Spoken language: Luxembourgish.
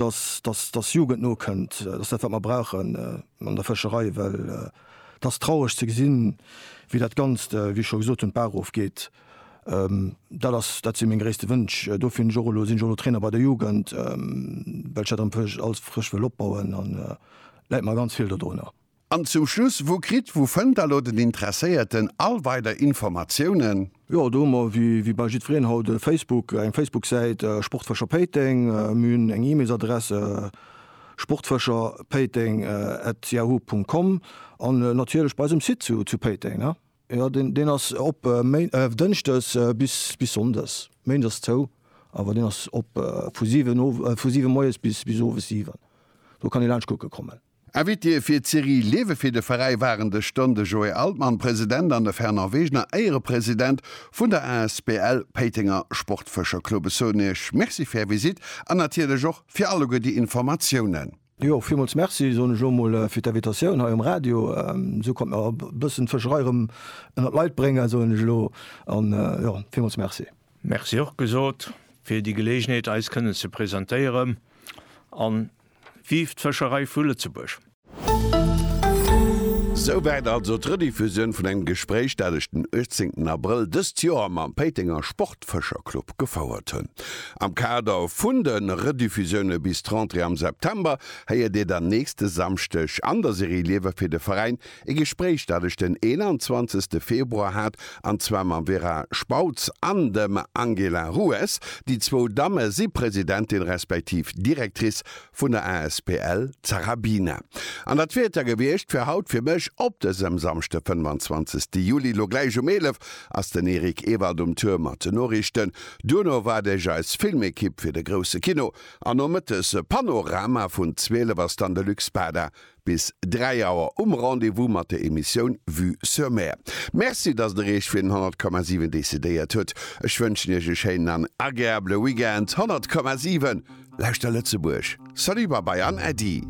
dass, dass, dass Jugend nokënnt, dass dat wat mer brauchen an der Fëscherei, well et ass traureg ze gesinn, wéi dat Ganzt, wéi ech scho gesot hunn, d'Bach erofgeet. Dat ass, dat si meng gréisste Wënsch. Dofir hunn ech och elo, sinn ech och elo Trainer bei der Jugend, well ech dat erëm alles frësch wëll opbauen an et läit mer ganz vill dodrunner. An zum Schluss, wou kritt, wou fënnt da lo den Interesséierten all weider Informatiounen? Jo, do hu mer wéi bal jiddwereen haut e Facebook, eng Facebook-Säit Sportfëscher Péiteng. Mir hunn eng E-Mails-Adress sportfëscherpéiteng at yahoo Punkt com an natierlech bei eis um Site zu Péiteng, jo, deen ass op dënschdes bis sonndes, méindes ass zou, awer deen ass op vu siwen moies bis owes siwen, do kann ee laanscht kucke kommen. Invitée fir d'Serie Lewe fir de Veräi waren dës Stonn de Joé Altmann, President, an de Fernand Wegener, Éierepresident vun der asbl Péitenger Sportfëscherclub. Ech soen Iech Merci fir Är Visite an natierlech och fir alleguer déi Informatiounen. Jo, villmools Merci, soen ech och mol, fir d'Invitatioun hei um Radio. Esou konnte mer e bëssen d'Fëscherei erëm ënnert d'Leit bréngen, soen ech elo. An jo, villmools Merci. Merci och gesot fir déi Geleegenheet, eis kënnen ze presentéieren an Vive d'Fëscherei vu Lëtzebuerg! Souwäit also d'Rediffusioun vun engem Gespréich, dat ech den 18 Abrëll dëst Joer mam Péitenger Sportfëscherclub gefouert hunn. Am Kader vun de Rediffusioune bis d'Rentrée am September héiert Dir dann nächste Samschdeg an der Serie Liewe fir de Veräin E Gespréich, dat ech den 21 Februar hat, an zwar mam Vera Spautz an dem Angela Rues. Déi zwou Damme si Presidentin respektiv Directrice vun der asbl Zarabina. An dat wier et da gewiescht fir haut fir mech op dësem Samschde 25 Juli. Lo gläich um 11 ass den Eric Ewald um Tour mat den Noriichten. Duerno waart iech eis Filmekipp fir de grousse Kino. An nomëttes e Panorama. Vun 12 ass dann de Luc Spada Bis 3 Auer um Rendez-vous mat der Emissioun Vue sur Mer. Merci, dass Der Iech fir den 100,7 decidéiert hutt. Ech wënschen Iech e schéinen an agreabele Weekend. 100,7, Lauschter Lëtzebuerg! Salut, Babai an Äddi!